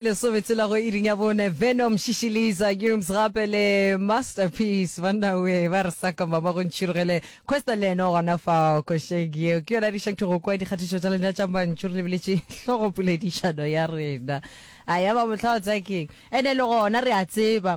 Lesobetsi la go iring ya bone, Venom, Shishi Lisa, Gums gape le Masterpiece. Banna we ba re saka mama go ntšhirogele. Kwesta le ene o gona fao košeng yeo. Ke yona a dišang go kwa dikgatišo tša lena tša mantšu re lebeletše hlogopoledišano ya rena. A ya ba mohla o tsaya keng? Ene le gona re a tseba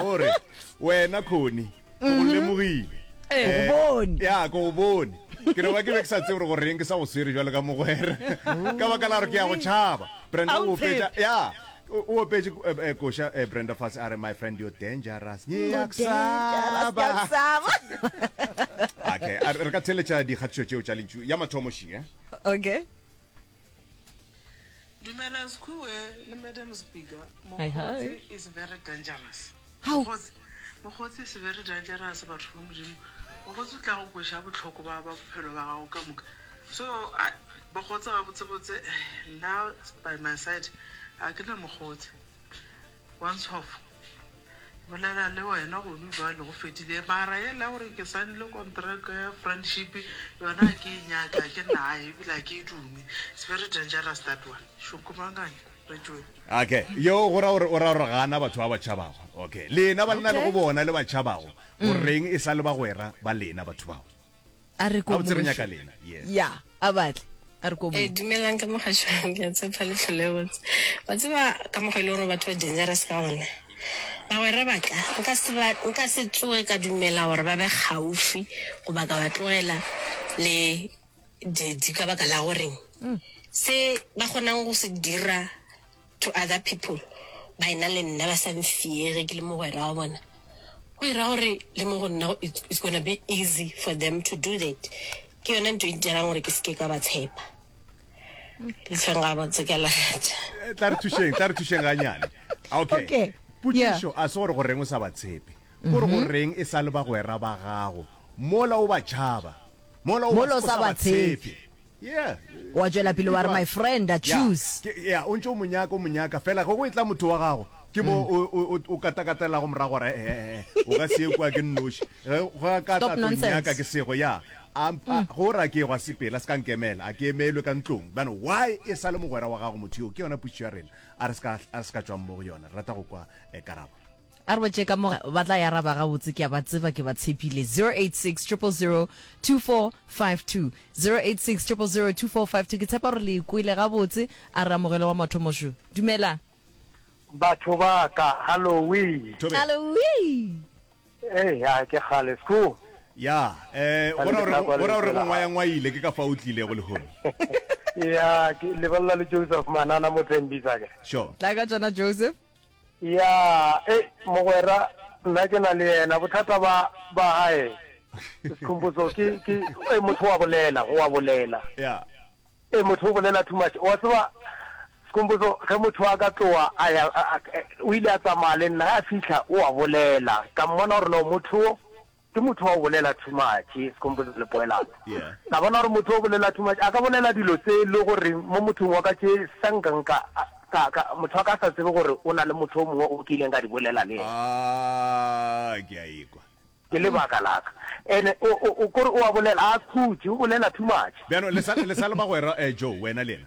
gore wena khoni o mhm. lemogile eh. bone ya ko bone ke no ba ke be ke sa tse gore goreng ke sa go swere jalo ka mogwere ka baka la gore ke ya go tšhaba brenda o fetsa ya o opetse eh, eh, kosha brenda fase a re my friend you're dangerous okay re ka theletša dikgatišo tšeo tša lentšu ya mathomošing e okay Dumela Skhue le Madam Speaker. Mokgotsi is very dangerous. How? Mokgotsi, Mokgotsi is very dangerous batho ba modimo. Mokgotsi o tla go kwesha botlhoko ba ba bophelo ba gago ka moka. So, I, Mokgotsi ga botse botse, now by my side, a ke na Mokgotsi. Wanshoff, bolela le wena gonu bjale go fedile mara yela ya gore ke saenile kontraka ya friendship yona ga ke e nyake ga ke naye ebile ga ke e dume it's very dangerous that one šukumangane re tšwele Okay, yeo go ra gore o ra gore ga a na batho ba ba tšhabago. Okay, lena banna le go Okay. bona le ba tšhabago, go reng e sa le bagwera ba lena batho bao? a re ko ya a batle a re ko e eh, dumelang ka mogashwang ke a tshepa le tlhole botse wa tseba ka mogo e le gore batho ba dangerous ka gona bagwera batla nka se tsoge ka dumela gore ba be gaufi goba ka ba tlogela le didi ka baka la goreng mm. se ba kgonang go se dira To other people, ba e na le nna, ba sa nfiege ke le mogwera wa bona, go e ra gore le mo go nna go it's, it's gonna be easy for them to do that. Ke yona nto e dirang gore ke se ke ka ba tshepa. Lefeng ga botse ka lagatša. Eh, tla re thušeng tla re thušeng ganyane okay, Okay, potšišo a se gore go reng o sa ba tshepe gore go reng e sa le bagwera ba gago mola o ba tšhaba mola o Mola o sa ba tshepe. Wa tšwela pele wa re, My friend, I choose. Ya, o ntše o mo nyaka, o mo nyaka, feela ge go etla motho wa gago, ke mo o, o, o, o katakatelelago morago gore, He, he, he, o ka se ye kua ke nnoši. Ge, ge a ka Stop tla tlo nonsense. nnyaka ke sego, ya, a, a, ge o re a ke go a sepela, se ka nkemela, a ke emelwe ka ntlong. Bjale, why e sa le mogwera wa gago motho yoo? Ke yona potšišo ya rena. A re se ka, a re se ka tšwang mo go yona. Re rata go kwa eh, karabo. A re ba tše ka mo ba tla ya raba gabotse ke a ba tseba ke ba tshepile 0860002452 0860002452 ke tshepa gore le ikwele gabotse a re amogelo wa mathomo šo dumelang Batho ba ka, hallowee. Tobe. Hallowee. Hey, ya ke kgale sku. Ya, eh bona gore bona gore go ngwaya ngwaile ke ka fa o tlile go le hole. Ya, ke lebella le Joseph Manana mo tsembisa ke. Sure. Tla ka tsona Joseph. Ya, ei, mogwera, nna ke na le yena, bothata ba, ba gae, Skhumbudzo, ke, ke, ei, motho wa bolela, wa bolela. Ya. Ei, motho o bolela too much. Wa tseba, Skhumbudzo, ge motho a ka tloga a ya, a, a, o ile a tsamaya le nna, ge a fihla, o a bolela. Ka mmona gore no motho wo, Ke motho wa go bolela too much, se kgompotsa le poelano. Ka bona gore motho wa go bolela too much a ka bolela dilo tse e le gore mo mothong wa ka tše sa nka nka ka, ka, motho wa ka a sa tsebe gore o na le motho o mongwe o ke ileng ka di bolela le yena. Aah, ke a ekwa. Ke lebaka la ka. Ene o, o, o, kore o a bolela, a khutše, o bolela too much. Bjalo, le sa, le sa le bagwera, eh, Joe, wena le yena.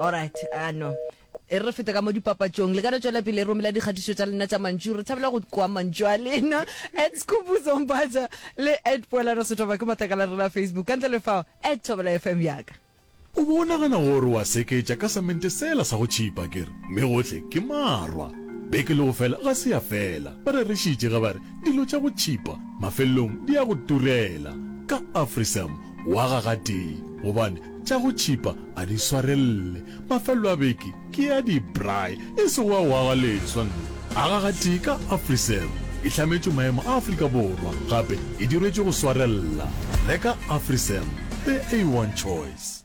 alright a no e re fete ka mo dipapatšong le ka no tšwela pele e romela dikgatišo tša lena tša mantšu re thabela go kwa mantšu a lena at skhupuzombatša le at poelano setoba ke matlakala rena facebook ka ntle le fao at thobela fm yaka O bo o nagana gore wa seketša ka samente sela sa go tšhipa ke re, mme gohle ke marwa. Beke le go fela ga se ya fela, ba rerišitše ge ba re dilo tša go tšhipa mafelelong di ya go turela. Ka Afrisam Waga gatee gobane tša go tšhipa a di swarelle. Mafelelo a beke ke a di-braai e sego a waga leswa nna. Aga gatee ka Afriserv e hlametšwe maemo a Afrika Borwa gape e dirwetšwe go swarella. Reka Afriserv, the A1 choice.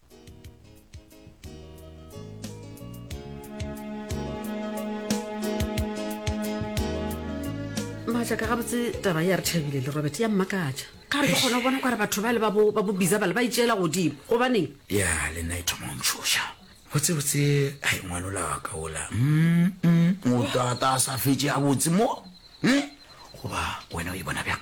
maatla ka gabotse taba ya re thabile le robert ya mmakatša ka re ke kgona go bona kware batho ba le ba bo ba bo bizabale ba itšeela godimo gobaneng ya le nna e thoma o ntshoša botsebotse a e ngwalola wa ka ola Mm, mm, o tata a sa fetse a botse mo Eh, goba wena o e bona bjang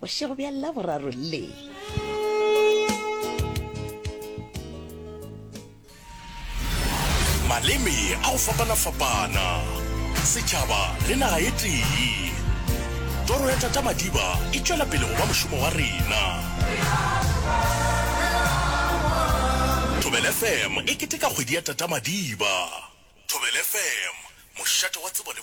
Bošego bja Laboraro le. maleme a go fapana-fapana setšhaba le naga e tee toro ya tata madiba e tšwela pele go ba mošomo wa rena thobel fm e keteka kgwedi ya tata madiba thobel fm mošate wa tsebo le